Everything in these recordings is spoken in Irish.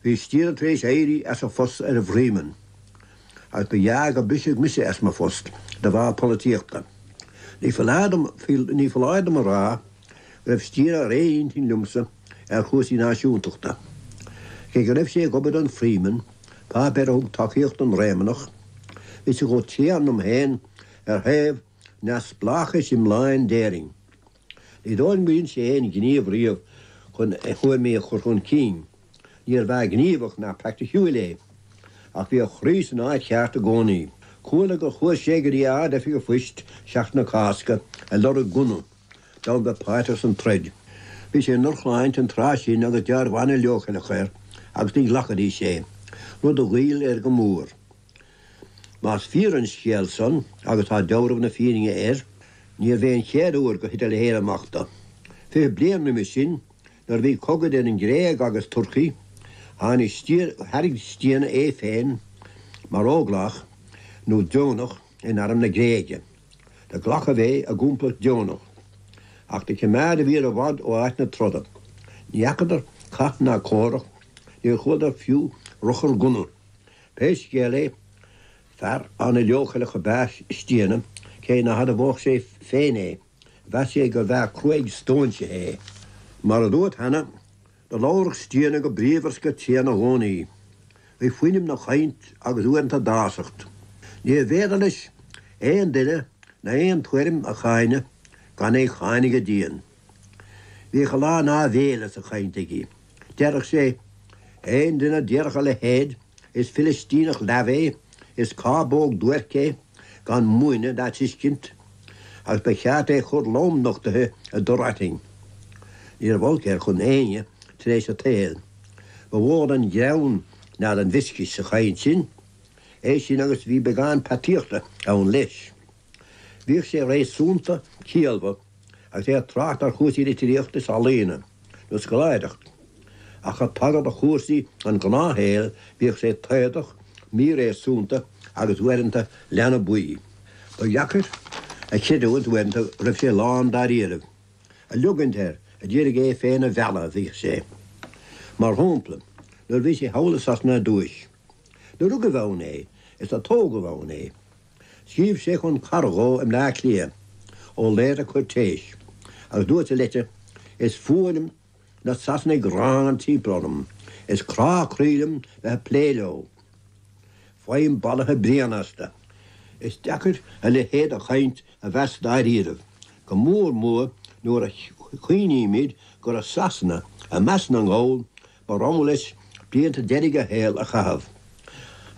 Bhí Stiana tar éis éirí as a phost ar an bhFreeman agus ba ghearr gur briseadh mise as mo phost de bharr polaitíochta. Ní foláir dom a rá go raibh Stiana ar aon intinn liomsa ar chúrsaí náisiúntachta. Cé go raibh sé ag obair don Freeman, páipéar a thug tacaíocht don Réamannach, bhí sé chomh tréan liom féin ar thaobh neamhspleáchais iomláin d'Éirinn. Ní dóigh liom gur dhein sé aon ghníomh riamh chun a thuairimí a chur chun cinn. Níorbh fhear gníomhach ná praiticiúil é, ach bhí a chroí san áit cheart i gcónaí. Chuala gur chuaigh sé go dtí Ard-Oifig an Phoist Seachtain na Cásca ag lorg gunna, d'fhonn bheith páirteach san troid. Bhí sé i ndrochshláinte an tráth sin agus deabhramh an-leochaileach air agus ní ghlacfaidís é, rud a ghoill air go mór. Más fíor an scéal san, agus tá deabhramh na fírinne air, níorbh é an chéad uair gur thit a leithéid amach do. Fiche bliain roimis sin, nuair a bhí cogadh idir an Ghréig agus Turcaí, tháinig, thairg Stiana é féin mar óglach, nó deonach, in arm na Gréige. Do glacadh é i gcomplacht deonach. Ach do cimeádadh iad i bhfad ó áit na troda. Ní fheacadar cath ná comhrac, níor chualadar fiú ruchar gunna. Pé scéal é, fear an-leochaileach ab ea Stiana, cé ná hadmhódh sé féin é. Mheas sé gurbh fhear cruaidh stóinsithe é. Mar a dúirt cheana, do labhradh Stiana go bríomhar 's go tréan i gcónaí. Bhí fuinneamh 'na chainnt agus uaireanta dásacht. Níorbh fhéidir leis aon duine ná aon tuairim a cháineadh gan é cháineadh go dian. Bhíodh a lán áibhéile sa chaint aige. Deireadh sé, Aon duine a déarfadh a leithéid, is Filistíneach leamh é, is cábóg duairc é, gan múineadh ná tuiscint, agus ba cheart é a chur lom nochtaithe i dtor aitinn. Ní raibh olc air chun éinne tar éis an tsaoil. Ba mhó an greann ná an mhioscais sa chaint sin. É sin agus bhí beagán peataíochta ann leis. Bhíodh sé réasúnta ciallmhar agus é ag trácht ar chúrsaí litríochta is ealaíona, nó scoláireacht, ach ag tagairt do chúrsaí an ghnáthshaoil bhíodh sé taodach, míréasúnta agus uaireanta leanbaí. Ba dheacair a chreidiúint uaireanta go raibh sé lán dáiríribh, ag leogaint air a d'iarraidh é féin a mhealladh a bhíodh sé, mar shampla, nuair a bhí sé thall i Sasana ar dtúis. Do rugadh ann é is do tógadh ann é. Scríobh sé chun cara dhó i mBleá Cliath, Ó Laoire Cuirtéis, agus dúirt sa leitir, 'Is fuath liom na Sasanaigh gránna timpeall orm. Is crá croí liom bheith ag plé leo. Faighim balaithe bréan astu. Is deacair a leithéid de chaint a mheas dáiríribh, go mór mór nuair a chuimhnímid gur i Sasana, i measc na nGall, Ba rogha leis blianta deiridh a shaoil a chaitheamh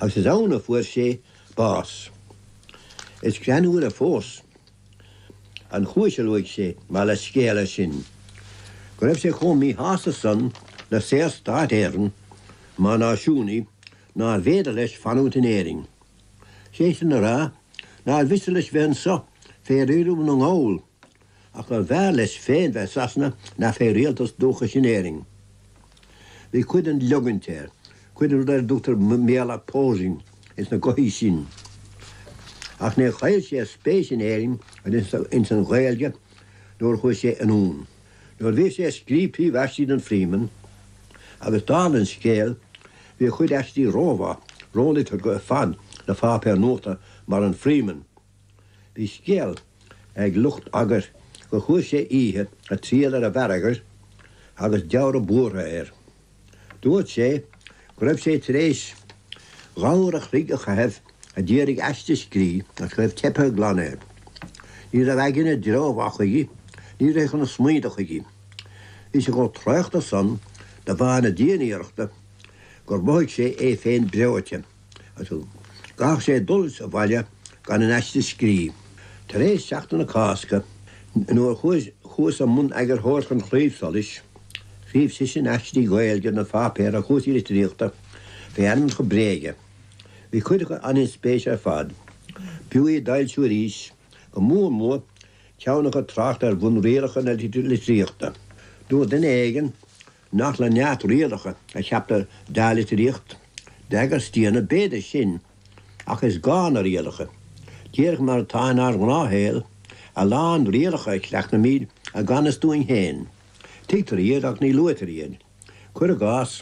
agus is ann a fuair sé bás. Is greannmhaire fós an chúis a luaigh sé mar leithscéal leis sin, go raibh sé chomh míshásta san le Saorstát Éireann mar náisiúnaí nárbh fhéidir leis fanúint in Éirinn. Sé sin le rá nár mhiste leis bheith anso fé riaradh na nGall. ach gurbh fhearr leis féin bheith i Sasana ná fé rialtas dúchais in Éirinn. Bhí cuid den leogaint air, cuid den rud ar a dtugtar i mBéarla, posing, ins na gothaí sin. Ach níor chaill sé a spéis in Éirinn agus ins an Ghaeilge nuair a chuaigh sé anonn. Nuair a bhí sé ag scríobh príomh-aistí don Freeman, agus dála an scéil, bhí a chuid aistí rómhaith, róliteartha ar fad do pháipéar nuachta mar an Freeman, Bhí scéal ag lucht eagair gur chuaigh sé oíche ag triall ar an bhfear eagair agus dealramh buartha air. Dúirt sé go raibh sé tar éis dhá uair a chloig a chaitheamh a d'iarraidh aiste a scríobh agus go raibh teipthe glan air. Ní raibh a aigne i dtreo mhaith chuige, ní rithfeadh na smaointe chuige. Bhí sé chomh traochta san de bharr na dianiarrachta gur mhothaigh sé é féin breoite. Chaithfeadh sé dul abhaile gan an aiste a scríobh. Tar éis Sheachtain na Cásca, nuair a chuas i mbun eagarthóireacht An Claíomh Solais, scríobh seisean aistí Gaeilge don pháipéar ar chúrsaí litríochta fé ainmneacha bréige. Bhí cuid acu an-inspéise ar fad. B'fhiú iad d'fhoilsiú arís, go mór mór ceann acu ag trácht ar bhunrialacha na litríochta. Dúirt duine éigin nach le neart rialacha a ceaptar dea-litríocht, beag ar staonadh b'fhéidir sinn, ach is gá na rialacha, díreach mar atá inár ngnáthshaol, a lán rialacha a chleachtaimid i gan fhios dúinn féin, tuigtear iad ach ní luaitear iad, cuir i gcás,